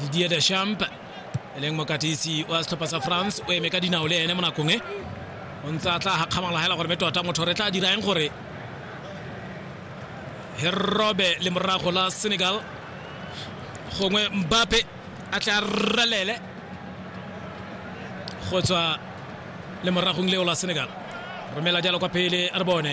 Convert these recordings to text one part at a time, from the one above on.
didier deschamp e leng mokatisi wa setlhopha sa france o eme ka dinao le ene mo nakong e o ntse a tla gakgamala fela gore be tota motho re tla dirang gore he robe le morago la senegal gongwe mbape a tla ralele go tswa le moragong leo la senegal romela jalo kwa pele re bone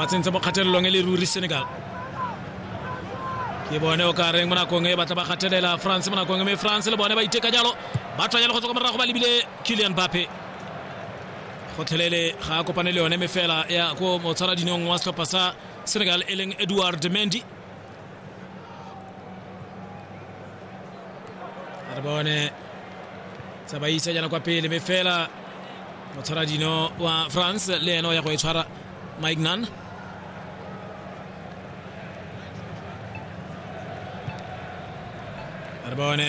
ba tsentse mo kgatelelong e le ruri senegal ke bone o ka reng mo nakong e batla ba kgathelela france mo nakong e me france le bone ba iteka jalo ba tswa jalo go tswa kwa morago ba lebile kilian bape gotlhelele ga a kopane le yone mefela ya ko motshwaradinong wa setlhopha sa senegal e leng edward mendy re bone tsamaisa jana kwa pele mme fela o tshwara dino wa france le ene o ya go e tshwara mike nan re bone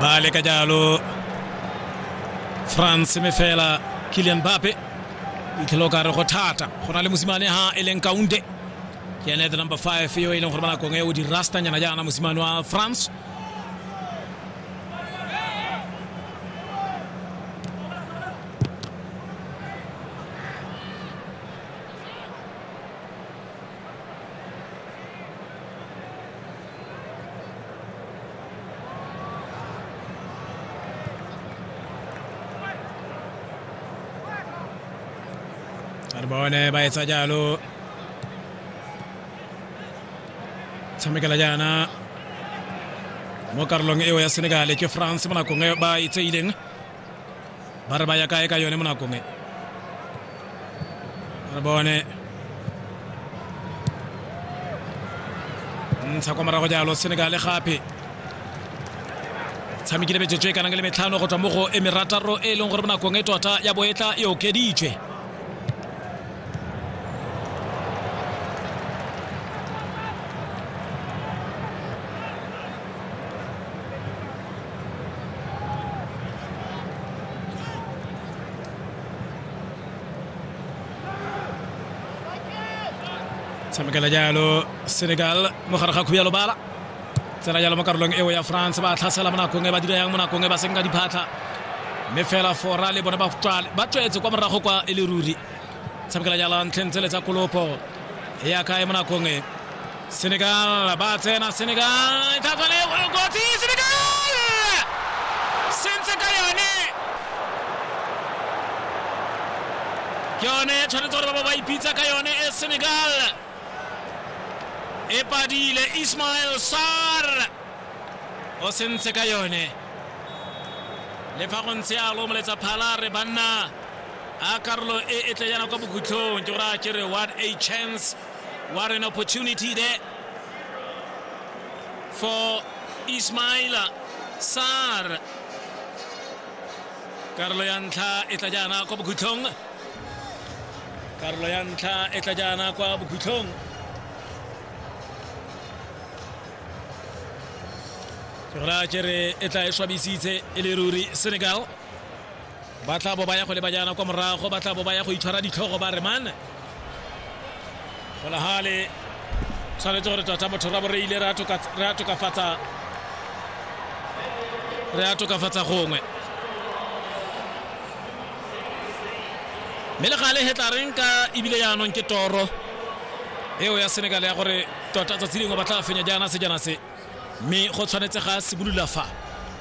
bale ka jalo france me fela kilian bape itlhelo ka re go thata go na le mosimane ha e leng kaunte ke ene the number 5 yo e leng gore ba nakong e o di rastanyana jaana mosimane wa france re bone ba etsa jalo tshamekela jaana mo karolong eo ya senegale ke france mo nakong e ba itseileng ba re ba ya kae ka yone mo nakong e re bone ntsha kwa morago jalo senegale gape tshamekile metsotso e kanang le metlhano go tswa mo go e merataro e leng gore mo nakong e tota ya boetla e okeditswe tshamekela jalo senegal mogare ga khuyalo bala tsela jalo mo karolong eo ya france ba tlhasela mo nakong e ba dira yang mo nakong e ba seng ka diphatlha mme fela fora le bone ba tswetse kwa morago kwa e le ruri tshamekela jalo ntlheng tsele tsa kolopo ya kae mo nakong e Senegal ba tsena Senegal tla tswa le kotsi Senegal sentse ka yone ke yone tshwanetse gore ba ba ba ipitsa ka yone e Senegal e padile Ismail Sar o sentse ka yone le fa go ntse a lomoletsa phala re banna a karolo e e tle yana kwa bokhutlhong ke gore a kere what a chance What an opportunity there for Ismaila Sar. Karolo ya ntlha e tla jaana kwa bokhutlhong. Karolo ya ntlha e tla jaana kwa bokhutlhong. Ke gore a kere e tla e swabisitse e le ruri Senegal. ba tla bo ba ya go leba jaana kwa morago ba tla bo ba ya go itshwara ditlhogo ba remane golagale tshwanetse gore tota motho ra bo re ile re a tokafatsa re a tokafatsa gongwe mme le gale hetlareng ka ebile jaanong ke toro eo ya senegal ya gore tota tsatsi lengwe ba tla fenya jaana sejana se mme go tshwanetse ga simolola fa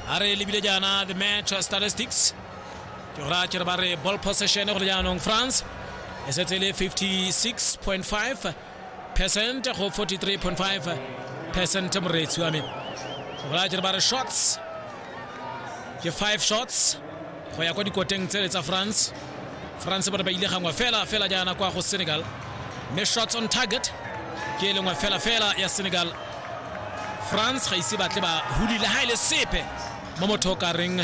a re lebile jaana the match statistics ke go raya ke re ba re ball possession go le jaanong france e setse e le 56.5 percent go 43.5 percent moreetsi wa me go raya ke re ba re shots ke five shots go ya kwa dikoteng tsele tsa france france bone ba ile gangwe fela fela jaana kwa go senegal mme shots on target ke e lengwe fela fela ya senegal france ga ise batle ba hulile ga e le sepe mo motho o ka reng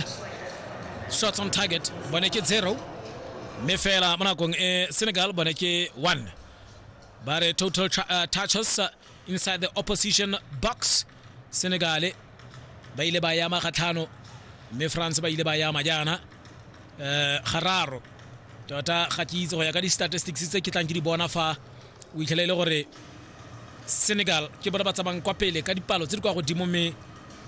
shots on target bone ke zero mme fela mo nakong e senegal bone ke one ba re total uh, touches inside the opposition box senegale ba ile ba yama gatlhano mme france ba ile ba yama jaana um gararo tota ga ke itse go ya ka di-statistics tse ke tlang ke di bona fa o itlhela e le gore senegal ke bona ba tsamayng kwa pele ka dipalo tse di kwa godimo mme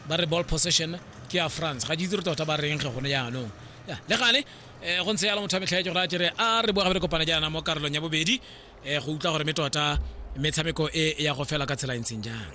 ba re ball possession ke ya france ga ke itse re tota ba reng ge gone jaanong le gale um go ntse yalo motho a metlhaetse gore a kere a re boa gabe re kopana jaana mo karolong ya bobedi um go utlwa gore me tota metshameko e ya go fela ka tsela e ntseng jang